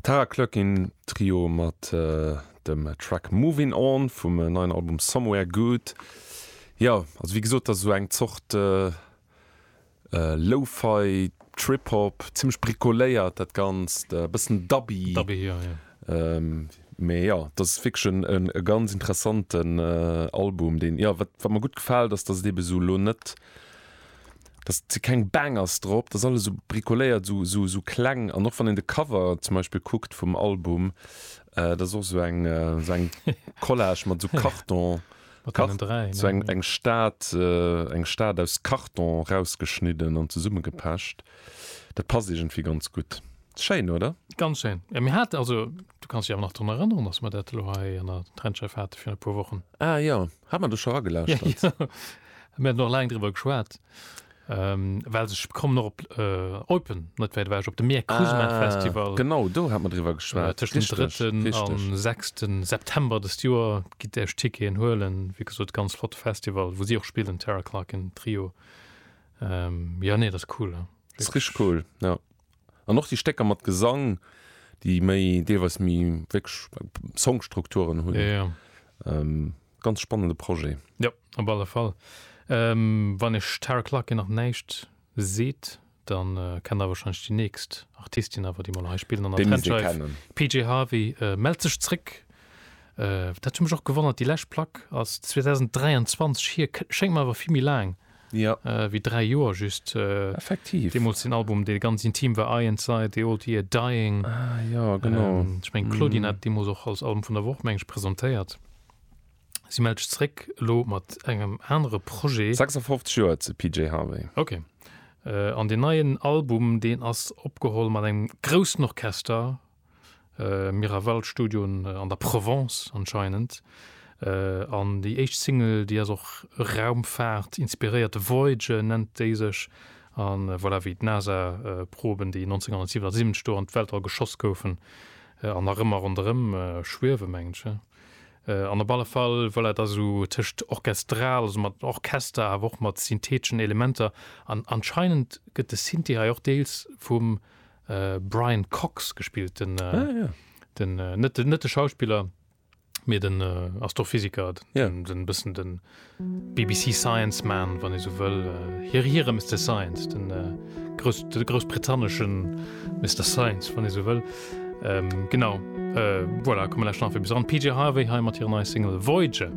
Tara Cluckin Trio mat dem Track Movin On vum neien Album Somewhere Good. Jo, also wéi gesot, dat ass esou eng Zort Lo-Fi, Trip-Hop, zimmlech bricoléiert dat Ganzt, e bëssen dubby. Dubby, jo, jo. Mee jo, dat ass wierklech e ganz interessanten Album, deen, jo, wat mir gutt gefält, ass, datt et eeben esou elo net, dass se keng Bangers drop, dass alles esou bricoléiert, esou esou esou kleng an och wann een de Cover zum Beispill kuckt vum Album, dat ass och esou eng esou eng Collage mat esou Karton, esou eng eng Stad eng Stad aus Karton erausgeschnidden an zesummegepecht. Dat passt iergendwéi ganz gutt. Schéin, oder? Ganz schéin. Jo, mir haten, also du kanns dech awer nach drun erënneren, dass mer dat elo hei an der Trendscheiw hate virun e puer Wochen? Ah jo, hat mer do scho eragelauschtert? Mir haten och laang driwwer geschwat, well sech, kommen och op Eupen, net wäit ewech, op de Mir Cruisen Art Festival. Ah, genau, do hate mer driwwer geschwat. Tëschent dem drëtten a sechste September dëst Joer gitt Dir Iech Ticketen huelen. Wéi gesot, ganz flotte Festival, wou si och spillen, Terra Clarkin Trio. Jo, nee, dat ass cool. Dat ass richteg cool, jo. An och déi Stécker mat Gesang, déi méi, deelweis méi wierklech Songstrukturen hunn. Ganz spannende Projet. Jo, op alle Fall. Wann iech Tara Clarke nach näischt seet, dann kennt der wahrscheinlech déi nächst Artistin awer, déi mol hei spillen an der Trendscheif, PJ Harvey mellt sech zréck. Dat huet mech och gewonnert, déi lescht Plack ass 2023 hier, schéngt mer awer vill méi laang. jo wéi 3 Joer just effektiv deemols den Album dee ganz intim war I Inside the Old Year Dying ah jo genau ähm, ech meng Claudine mm. hat deemols och als Album vun der Woch mengg presentéiert si mellt sech zréck lo mat engem anere Projet 56 Joer ze PJ Harvey okay äh, an den neien Album deen ass opgeholl mat engem groussen Orchester Miraval Studio an der Provence anscheinend. Äh, an déi éischt Single, déi ass och Raumfaart inspiréiert, Voyager nennt déi sech. A voilà, wéi d'NASA-Proben, déi 1977 do an d'Weltall geschoss goufen, an nach ëmmer ronderëm schwiewe mengen ech, hä? An op alle Fall, voilà, et ass esou tëscht orchestral, also mat Orchester, awer och mat syntheteschen Elementer. An anscheinend gëtt de Synthi hei och deels vum Brian Cox gespillt den ah, ja. den äh, net net de Schauspieler mir den äh, Astrophysiker ja. den bëssen den BBC Science man wann e sou wëll äh, hier hier Mister Science den äh, Groß, de großbritanneschen Mister Science wann e sou wëll ähm, genau äh, voilà, kommen nach fir bis an PJ Harvey heim mat hier nei Single Voyager.